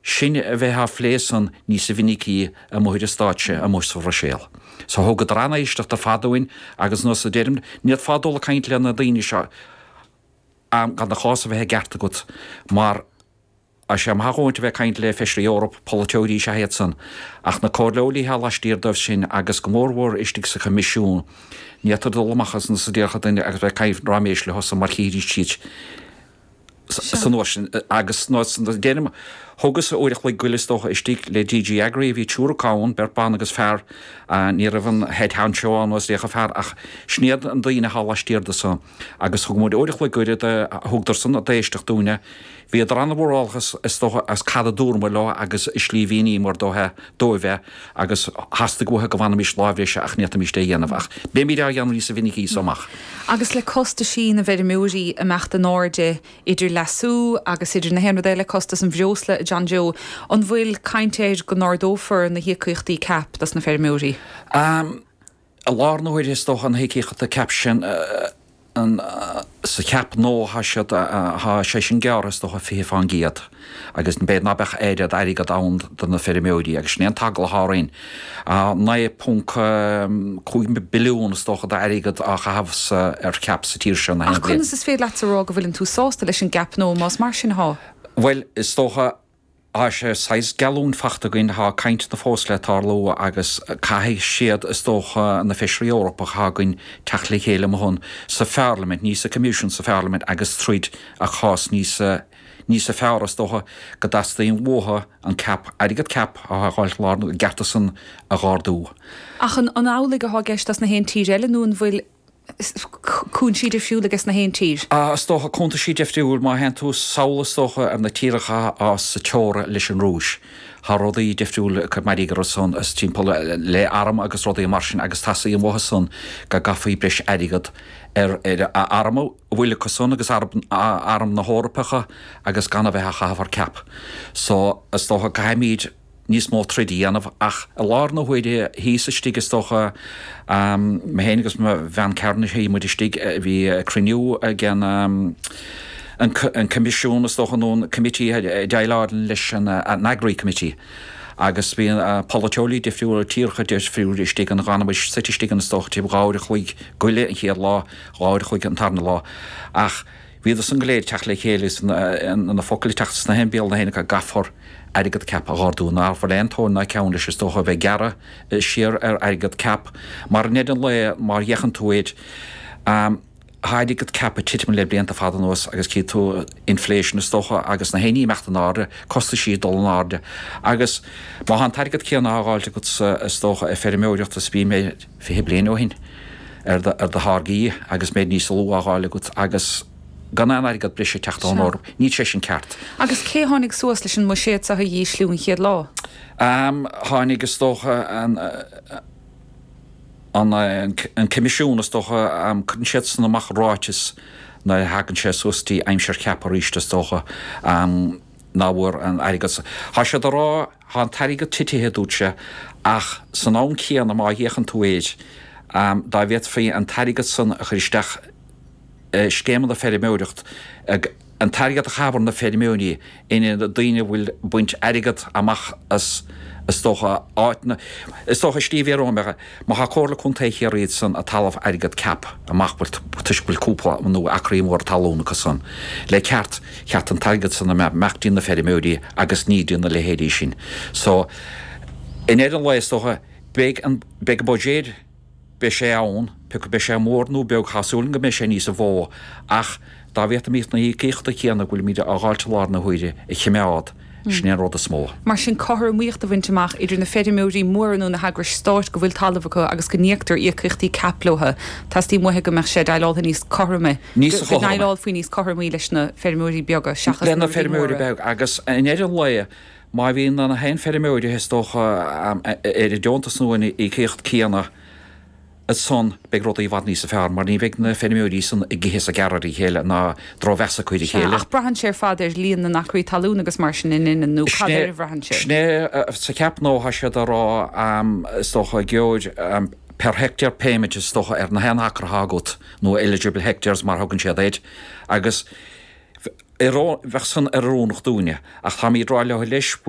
sin a bheith á phlé san níosa mhinicí amuigh ar stáitse amuigh sa Bhruiséil. Sea, thugadar an-éisteacht ar fad dúinn agus nós a deirim, n'fhéadfá dul ag caint le na daoine seo am gan do chás a bheith i gceart agat mar tá sé maith dhúinn a bheith ag caint le Feisirí Eoraip, polaiteoirí sea hiad san ach na comhairleoirí thá laistiar díobh sin agus go mór mhór istigh sa Choimisiún, n'fhéadtar dul amach as nós a déarfadh duine agus bheith ag caint ráiméis leosan mar chífidís sa nós sin agus, nós a deirim, thugas-sa uair a chloig go leith is dócha istigh le DG Agri a bhí triúr acu ann, beirt bhan agus fear. Ní raibh an head honcho ann, nó is dócha fear, ach sin iad na daoine thá laistiar de san. Agus thug muid uair a chloig go leith, thugadar san an-éisteacht dúinn a, bhíodar an-mhórálach is dócha as cad a dúramar leo agus an slí mhíníomar dóibh é. agus theastaigh uathu go bhfanfaimis lá breise ach n'fhéadfaimis é a dhéanamh ach beimid á dhéanamh níosa mhinicí as so amach. Agus le costaisí na bhfeirmeoirí ag imeacht in airde, idir leasú agus idir na haon rud eile, costas an bhreosla, a John Joe, an bhfuil caint air go n-ardófar na híocaíochtaí cap dos na feirmeoirí? I lár na huaire is dócha na híocaíochtaí cap sin sa chap nua thá siad thá sé sin gearrtha is dócha fiche fán gcéad agus beidh ná beadh an oiread airgead ann do na feirmeoirí agus sin é an t-eagla thá orainn. 9.5 billiún is dócha d'airgead á chaitheamh sa ar chap sa tír seo na haon bhliain. Ach conas is féidir leatsa rá go bhfuileann tú sásta leis an gcap nua más mar sin thá? Bhuel is dócha tá sé saghas geallúint faighte againn, tá cainteanna fós le tarlú agus caithfidh siad, is dócha, na feisirí Eorpacha atá againn, teacht le chéile, mo thon, sa Pharlaimint, ní sa Coimisiún, sa Pharlaimint agus troid an cás níos, níosa fearr. Is dócha go dteastaíonn uathu an cap, airgead cap a fhágáilt lárnach, a gcearta san a dh'ardú. Ach an amhlaidh atá i gceist as na haon tír eile nó an bhfuil. cúinsí difriúla aiges na haon tír. A, Is dócha, cuntaisí difriúil, má théann tú sall is dócha ar na tíortha thá sa teora leis an Rúis, thá rudaí difriúil ag cur mairg orthu san is timpeall le arm agus rudaí mar sin agus teastaíonn uathu san go gcaithfí breis airgead ar a arm a bhfuil acu san agus ar arm na hEorpa agus gan a bheith á chaitheamh ar cap so is dócha caithfimid níos mó troid a dhéanamh ach i lár na huaire shuíos istigh is dócha, mé féin agus mo bhean cearnais shuigh muid istigh, bhí cruinniú ag an Coimisiún is dócha nó an Committee ag deighleáil leis an Agri Committee agus bhí polaiteoirí difriúla, tíortha difriúla istigh ann. D'fhan muid suite istigh ann is dócha taobh dhá uair a chloig go leith an chéad lá, dhá uair a chloig an tarna lá ach Bhíodar san go léir ag teacht le chéile is na focail ag teacht as béal na héinne acu go gcaithfear airgead CAP a dh'ardú ná bhfuil aon tóin ná ceann leis is dócha a bheith ag gearradh siar ar airgead CAP mar i ndeireadh an lae má fhéachann tú air tá airgead CAP ag titim le blianta fada anuas agus cífidh tú inflation is dócha agus na héinní ag imeacht in airde, costaisí ag dul in airde agus má tá an t-airgead céanna á dh'fháilt agatsa is dócha ar feirmeoireacht is a bhí ag. fiche bliain ó shin, ar do tháirgí agus méid níos lú á dh'fháil agat agus gan aon airgead breise ag teacht ón Eoraip. Níl sé sin ceart. Agus cé a tháinig suas leis an mbuiséad seo a dh'ísliú an chéad lá? Tháinig, is dócha, an Coimisiún, is dócha. Cuireann siadsan amach ráiteas nuair a thagann sé suas go dtí aimsir CAP aríst, is dócha, ná bhfuil aon airgead. Thá siad ag rá. Thá an t-airgead titithe, dúirt sé, ach san am céanna má fhéachann tú air, dá bhféadfaí an t-airgead san a chur isteach i scéimeanna feirmeoireacht, an t-airgead a thabhairt do na feirmeoirí in ionad daoine a bhfuil baint airgead amach as, is dócha, áiteanna, is dócha, Steve, é Rómhinic. Má thá Comhairle Contae Chiarraí iad san ag tuilleamh airgead CAP amach bhuel toisc go bhfuil cúpla nó acraí móra talún acu san. Le ceart, ba cheart an t-airgead san a bheith ag imeacht dtí na feirmeoirí agus ní dtí na leithéidí sin. So, i ndeireadh an lae is dócha, beidh an, beidh an budget, beidh sé ann, pé acu beidh sé mór nó beag, thá súil agam go mbeidh sé níosa mhó ach, Dá bhféadfaimíd na híocaíochta céanna go bhfuilimíd a dh'fháilt i láthair na huaire a chimeád, sin é an rud is mó. Mar sin, cothromaíocht a bhaint amach idir na feirmeoirí móra nó na heagrais stáit go bhfuil talamh acu agus go n-íoctar íocaíochtaí CAP leotha, teastaíonn uathu go mbeadh sé déileáltha níos cothroime, go ndéileálfaí níos cothromaí leis na feirmeoirí beaga seachas na rudaí móra. Agus i ndeireadh an lae, má bhíonn na haon fheirmeoir, is dócha, ar an deontas nó an íocaíocht céanna, ansan beidh rudaí i bhfad níosa fearr, mar ní bheidh na feirmeoirí san ag ithe is ag gearradh ar a chéile, ná drochmheas acu ar a chéile. Sea, ach braitheann sé ar fad ar líon na n-acraí talún agus mar sin an ea, nó cad air a bhraitheann sé? Sin é sa CAP nua tá siad ag rá, is dócha, gheobhaidh tú, per hectare payment is dócha ar na haon acra atá agat, nó eligible hectares mar thugann siad air, agus bheadh san ana-oiriúnach dúinne, ach táimíd ag rá leo leis, bhfuil.